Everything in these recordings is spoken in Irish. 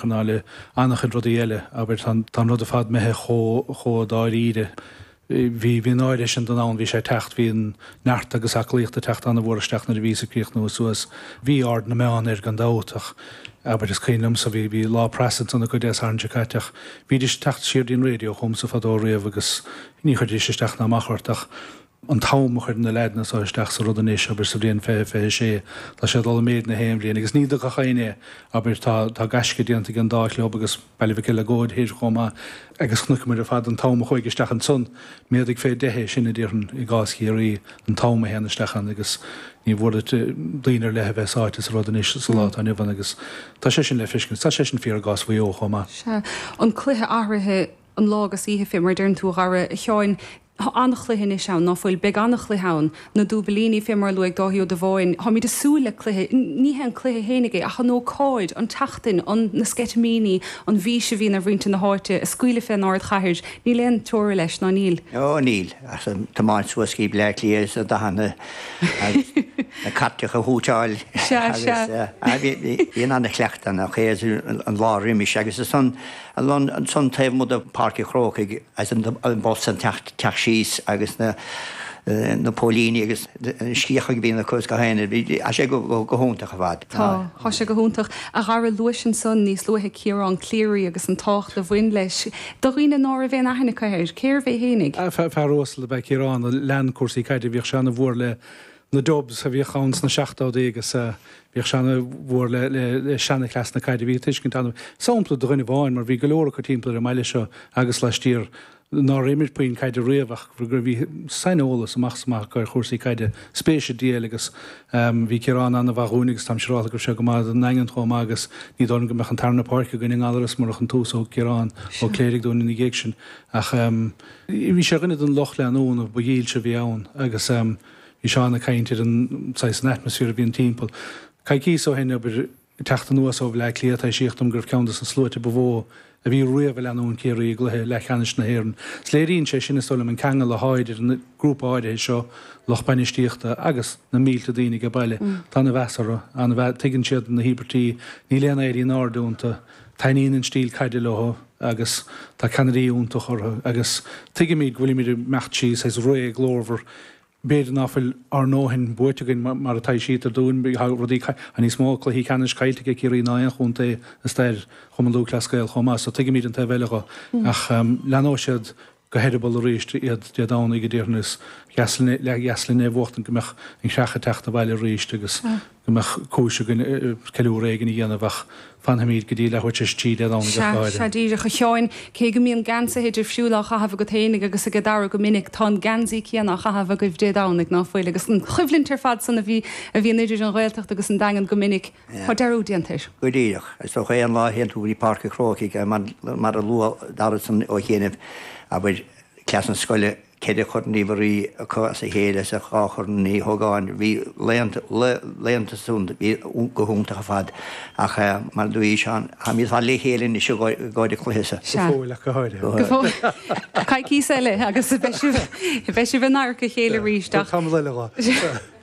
cosúil le an-chuid rudaí eile, abair, tá an rud ar fad imithe chomh dáiríre. Bhí an áirithe sin de ann, bhí sé ag teacht, bhí an neart agus aclaíocht ag teacht an-mhór isteach nuair a bhíos-sa ag críochnú suas. Bhí aird na meán air gan dabht ach, abair, is cuimhin liomsa, bhí lá preasa ansan acu Dé Sathairn seo caite ach bhídís ag teacht siar dtí'n raidió chugamsa fadó riamh agus ní chuirfidís isteach ná amach ort ach an t-am a chuir na leaideanna so isteach sa rud anois, abair, sa bhliain fiche, fiche a sé, tá sé ag dul i méid na haon bhliain, agus ní dtuigfeadh éinne, abair, tá, tá gaisce déanta ag an dá chlub agus Baile Mhic Eileagóid thoir chomh maith agus tuigimid ar fad an t-am a chuaigh isteach ansan, méadaigh fé dheich é sin a déarfainn i gcás Chiarraí, an t-am a théann isteach ann agus ní mór duit daoine ar leith a bheith sáite sa rud anois sa lá atá inniu ann agus tá sé sin le feiscint, tá sé sin fíor i gcás Mhaigh Eo chomh maith. Sea. An cluiche athraithe. an lá agus oíche fé mar a deireann tú a Dhara. A Sheáin. Tá an-chluiche anois ann, ná fuil? Beidh an-chluiche ann, na Dúbailíní fé mar a luaigh Dáithí Ó Dubháin. Táimíd a' súil le cluiche, ní hé an cluiche fhéinig é ach an ócáid, an tseachtain, an, na sceitimíní, an bhís a bhíonn ar mhuintir na háite ag scaoileadh fén ardchathair. Níl aon teora leis, ná níl? Ó níl, ach an tiomáint suas go dtí Bleá Cliath is na dathanna agus na cairteacha ag húiteáil agus, sea, sea. Bíonn ana chuileachta, an lá roimis agus is ann, Ansan taobh amuigh de Pháirc an Chrócaigh is an bus ag teacht síos agus na póilíní agus an scíth a bhíonn acu is gach aon rud, thá sé go hiontach ar fad. Tá, thá sé go hiontach. A Dhara, luais ansan níos luaithe Ciarán Cleary agus an tábhacht a bhain leis. Do dhaoine ná raibh aon aithne acu air, cérbh é fhéinig? Fear uasal ab ea Ciarán a lean cúrsaí caide. Bhíodh sé ana mhór le na Dubs a bhíodh ann sna seachtódaí agus bhíodh sé ana mhór le seana-chleas na caide a bhí ag tuiscint ana sampla do dhuine amháin mar bhí go leor acu timpeall ar an mbaile seo agus laistiar nár imir puinn caide riamh ach gur bhí sain-eolas amach is amach acu ar chúrsaí caide, spéis i dtl agus bhí Ciarán ana mhaith dhúinn agus táim siúráltha go raibh sé go maith don nDaingean chomh maith agus ní dóigh liom go mbeadh an tarna páirc againn i nGallarus murach an tús a thug Ciarán Ó Cléirigh dúinn ina dhiaidh sin ach bhí sé ar dhuine den lucht leanúna ba dhílse a bhí ann agus. Bhí Seán ag caint ar an saghas an atmosphere a bhíonn timpeall. Coicíos ó shin, abair, ag teacht anuas ó Bhleá Cliath, taibhsíodh dom go raibh ceann dos na sluaite ba mhó a bhí riamh ag leanúint Ciarraí i gcluiche leathcheannais na hÉireann. Is léiríonn sé sin, is dóigh liom, an ceangal atá idir an grúpa áirithe seo, lucht bainistíochta agus na mílte daoine age baile. Tá ana mheas orthu, ana mheas, tuigeann siad na híobairtí, níl aon éirí in airde iontu. Taitníonn an stíl caide leothu agus tá ceannairí iontach orthu agus tuigimid go bhfuilimid ag imeacht trí saghas ré ghlórmhar b'fhéidir ná fuil ár ndóthain buaite againn mar a taibhsítear dúinn tá rudaí tá níos mó cluichí ceannais caillte aige Ciarraí ná aon chontae i stair Chumann Lúthchleas Gael chomh maith so tuigimid an taobh eile dho ach leanóidh siad go heireaball arís iad Dé Domhnaigh, a déarfainn, is Geaslainne, leath-Gheaslainne a bhuachtaint go mbeadh an Chreach ag teacht abhaile arís agus go mbeadh cúis againn ceiliúradh éigin a dhéanamh, ach fanfaimíd go dtí leathuair tar éis a trí Dé Domhnaigh ach go háirithe. Sea díreach, a Sheáin, cé go mbíonn geansaithe difriúla á chaitheamh agat fhéinig agus ag Dara go minic, tá an geansaí céanna á chaitheamh agaibh Dé Domhnaigh, ná fuil? Agus an choimhlint ar fad san a bhíonn idir an Ghaeltacht agus an Daingean go minic, Tá dearúd déanta air. Go díreach. Is dócha é an lá a théann tú go dtí Páirc an Chrócaigh, mar a luaigh Dara ansan ó chianaibh, abair, cluichí na scoile, ceithre Chorn Uí Mhuirí acu as a chéile is an dá Chorn Uí Ógáin, bhí laethanta san bhí go hiontach ar fad. Ach, mar a dúirt Seán, táimid ar fad le chéile anois i gcomhair an chluiche seo. Go fóill ach go háirithe. Go fóill. Coicís eile agus beidh sibh in adharca a chéile arís ach. Tá tamall eile dhó.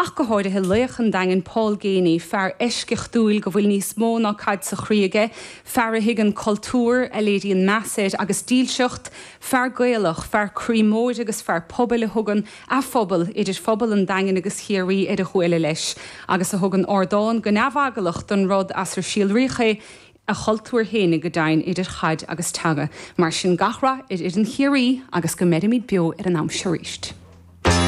ach go háirithe laoch an Daingin Paul Geaney, fear eisceachtúil go bhfuil níos mó ná caid sa chroí aige, fear a thuigeann cultúr, a léiríonn meas air agus dílseacht, fear Gaelach, fear croí mhóir agus fear pobail a thugann a phobal, idir phobal an Daingin agus Chiarraí, ar a ghuala leis agus a thugann ardán go neamheaglach don rud as ar síolraíodh é, a chultúr féin go deimhin, idir chaid agus teanga. Mar sin, gach rath ar fhoireann Chiarraí agus go mbeirimid beo ar an am seo arís.